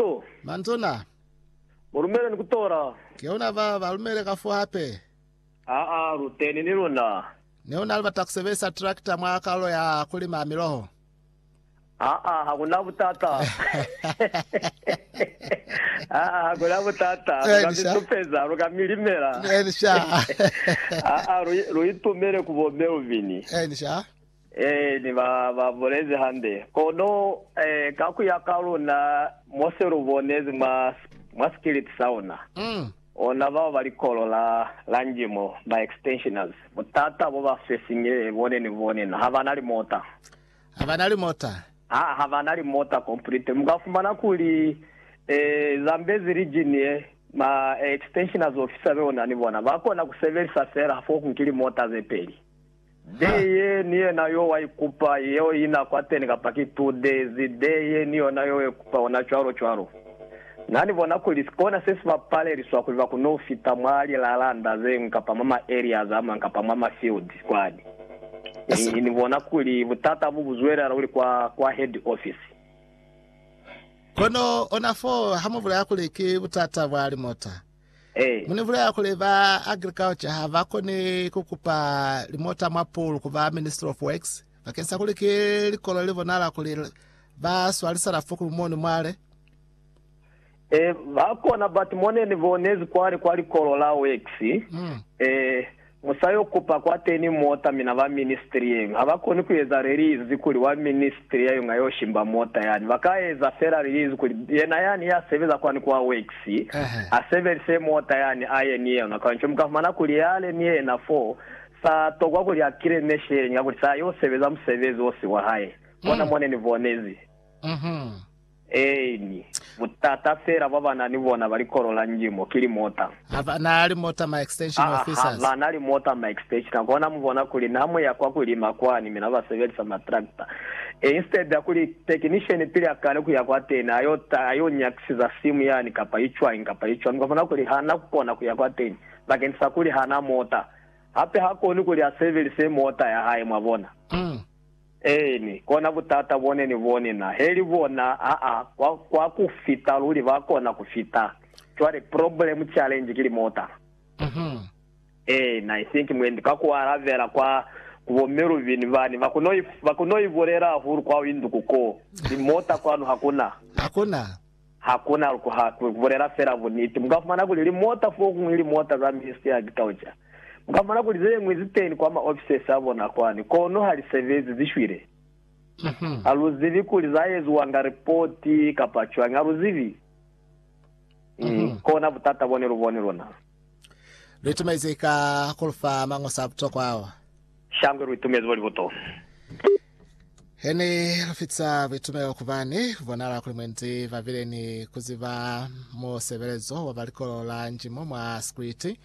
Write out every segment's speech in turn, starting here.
Yo. Mantuna. Mu lumele ni ku tola. Ke una ba ba lumele ka fo hape. Aa, lu teni ni luna. Ne una libata ku sebelisa tractor mwa kalulo ya ku lima miloho? Aa, ha ku na butata. Aa, ha ku na butata. Lu ka mi Elisha. supeza, lu ka mi limela. Elisha. Aa, lu, lu itumele ku bo Melvin. Elisha. Ee, ni ba ba bulezi hande. Kono, ka ku ya ka luna, mo se lu bonezi mwa, mwa sikiliti sa ona, ona bao ba likolo la, la Njimo, ba extensioners, butata bo ba swesingile bone ni bone na, ha ba na limota. Ha ba na limota. Ha, ha ba na limota completely. Mu ka fumana kuli, ee, Zambezi region ye, ma extensioners officer be ona ni bona, ba kona ku sebelisa fela fo ku nki limota ze peli. Deye ni yena yo wa ikupa yeo ina kwateni kapa ki two days deye ni yona yo ikupa ona cwalo cwalo. Na ni bona kuli si kona se si ba paleliswa kuli ba kono fita mwa li lalanda zengwi kapa mwa ma areas amang kapa mwa ma field kwani. Ni ni bona kuli butata bu bu zwelela luli kwa kwa head office. Kono ona foo ha mu bulaya kuli ki butata bwa limota. Mu ni bulela kuli ba agriculture ha ba koni ku kupa limota mwa pool ku ba Ministry of Works bakeng sa kuli ki likolo li bonala kuli ba swalisana fukulu moni mwale? Eeh, ba kona but mo ne ni bonezi kwale kwa likolo la Works, eeh, Mu sa yo kupa kwateni mota mina ba ministry yeñwi ha ba koni ku eza release kuli wa ministry ya yonga yo shimba mota yani. Ba ka eza fela release kuli yena yani ya sebeza kwani kwa works a sebelise mota yani a ye ni yona. Kanco mu ka fumana kuli yale ni yena fo sa tokwa kuli a kile meshe yeñwi ya kuli sa yo sebeza musebezi o si wa hae. Bona mo ne ni bonezi. Eeni. Butata fela bwa ba na ni bona ba likolo la Njimo ki limota. Ha ba na limota ma extension Aa, ha officers. ba na limota ma extension. Kona mu bona kuli na mu ya kwa ku lima kwani, mi na ba sebelisa ma tractor. E, instead ya kuli technician pili a kale ku ya kwateni, a yo ta, a yo nyakisiza simu yani, kapa i cwañi, kapa i cwañi, kwa bona kuli ha na ku kona ku ya kwateni, bakeni sa kuli ha na mota. Hape ha koni kuli a sebelise mota ya hae, mwa bona. Eeni, kona butata bone ni bone na. Heli bona, aa, kwa, kwa ku fita luli, ba kona ku fita. Cwale, problem, challenge ki limota. Uh-huh. Eena, I think mwendi, ka ku alabela kwa, ku bo Melvin bani, ba kono i, ba kono i bulela hahulu kwa induku ko. Limota kwanu hakuna. Hakuna. Ha ku na luko ha ku bulela fela buniti. Mu ka fumana kuli limota fokuñwi, limota za Ministry ya Agriculture, mu ka fumana kuli ze ñwi zi teni kwa ma offices a bona kwani, kono ha li sebezi, zi shwile. Ha lu zibi kuli za eziwanga ripoti kapa cwañi. Ha lu zibi. Ki kona butata bo ne lu boni luna. Lu itumezi ka ku lu fa mañoso a butokwa ao. Shangwe lu itumezi bo libuto. Hene lufitisa buitumelo kubani kubonala kuli mwendi babile ni kuziba musebelezo wa balikolo la njimo mwa sikwiti.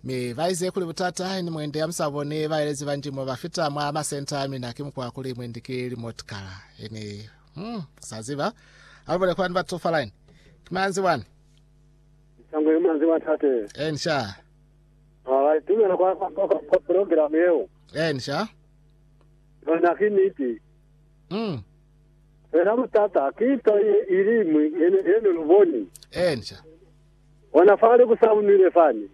Mi baize kuli butata ni mwendi amusaboni baelezi ba njimo bafita mwa masenta amina ki mukwa kuli mwendi ki limotikala. Hene hmm, kusaziba alubone kwani batu falaini kimanzi wani Sangwe manzi wa tate. eni sha Ah, tumela kwa kwa kwa program yeo. eni sha Yona ki niti. Fela butata ki nto ye iliñwi ye ne lu boni. Bona fale ku saunile fani.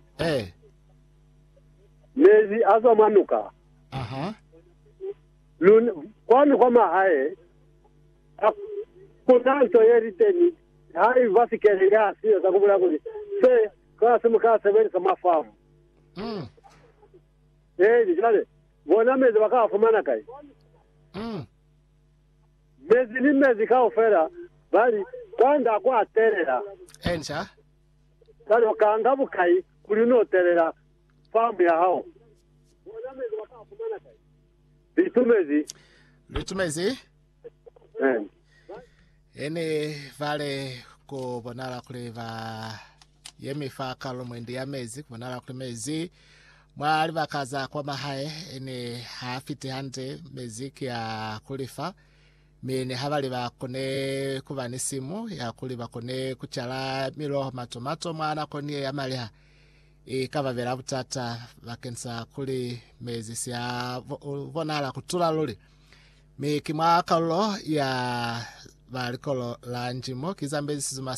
Mezi a zwa mwa nuka. Kwani kwa mahae ha ku na nto ye li teni haiba sikele ya siyo za ku bulaya kuli se kasi mu ka sebelisa mwa famu. Eeni, cwale. Bona mezi ba ka a fumana kai? Mezi ni mezi kaufela, ba li, Kwa nda ku a telela. Cwalo ka nga bukai kuli no telela famu ya hao? Bona mezi ba ka a fumana kai? Litumezi. Litumezi. Ba li, Ene bale ku bonala kuli ba. Ye mi fa kalo mwendi ya mezi ku bonala kuli mezi mwa libaka za kwa mahae ne ha fiti hande, mezi ki a ku lifa, mi ne ha ba li ba kone ku ba ni simu ya kuli ba kone ku cala miloho, matomato mwa nakoni ye ya maliha, i ka ba bela butata bakeni sa kuli mezi si a bonala ku tula luli. Mi ki mwa kalulo ya ba likolo la Njimo ki zambezi sizuma sa